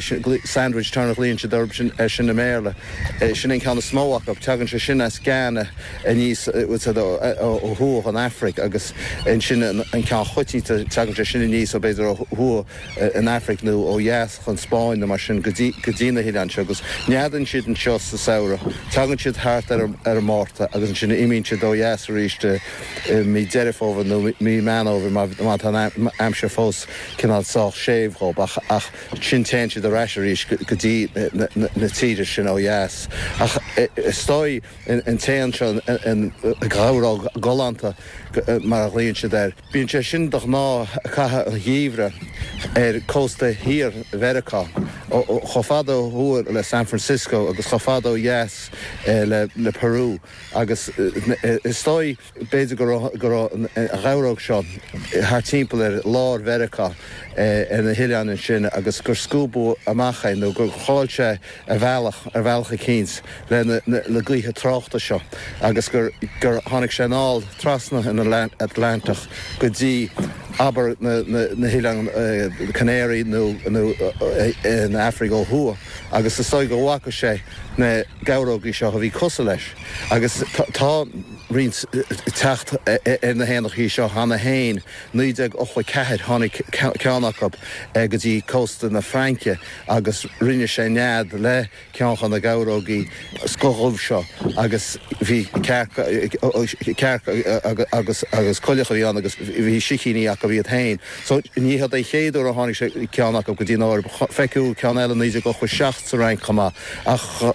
Sin sandwich tern a ghlaonn siad air air sin i mBéarla. Sin é an ceann is mó acu. Teagann sé sin as Ghana aníos ó thuaidh ón Afraic agus ansin an ceann choitianta. Teagann sé sin aníos ó b'fhéidir ó thuaidh an Afraic nó ó dheas den Spáinn nó mar sin go dtí na hoileáin seo agus neadaíonn siad anseo sa samhradh. Tagann siad thart ar an Márta agus ansin imíonn siad ó dheas arís i mí Deireadh Fómhair nó mí Meán Fhómhair má tá an aimsir fós cineál sách séimh dhóibh, ach ansin téann siad ar ais arís go dtí na tíre sin ó dheas. Ach is dóigh an t-éan seo an gheabhróg ghalánta, mar a ghlaonn siad air, bíonn sé sin de ghnáth ag caitheamh an gheimhridh ar chósta thiar Mheiriceá, chomh fada ó thuaidh le San Francisco agus chomh fada ó dheas le Peru, agus is dóigh, B'fhéidir go raibh go raibh an gheabhróg seo thart timpeall ar lár Mheiriceá ar na hoileáin ansin agus gur scuabadh amach é nó gur chaill sé a bhealach ar bhealach eicínt le na gaoithe tráchta seo agus gur gur tháinig sé anall trasna an Atlantach go dtí abair na hOileáin Chanáraí nó nó an Afraic ó thuaidh agus is dóigh go bhfaca sé na geabhrógaí seo a bhí cosúil leis agus tá roinnt teacht ar na héanachaí seo cheana féin. 1984 tháinig ceann acu go dtí cósta na Fraince agus rinne sé nead le ceann de na geabhrógaí scothdhubh seo agus bhí cearc agus coileach a bhí ann agus bhí sicíní acu iad féin. So ní hiod é an chéad uair a tháinig ceann acu go dtí an Eoraip. Feiceadh ceann eile 1987 sa Fhrainc chomh maith ach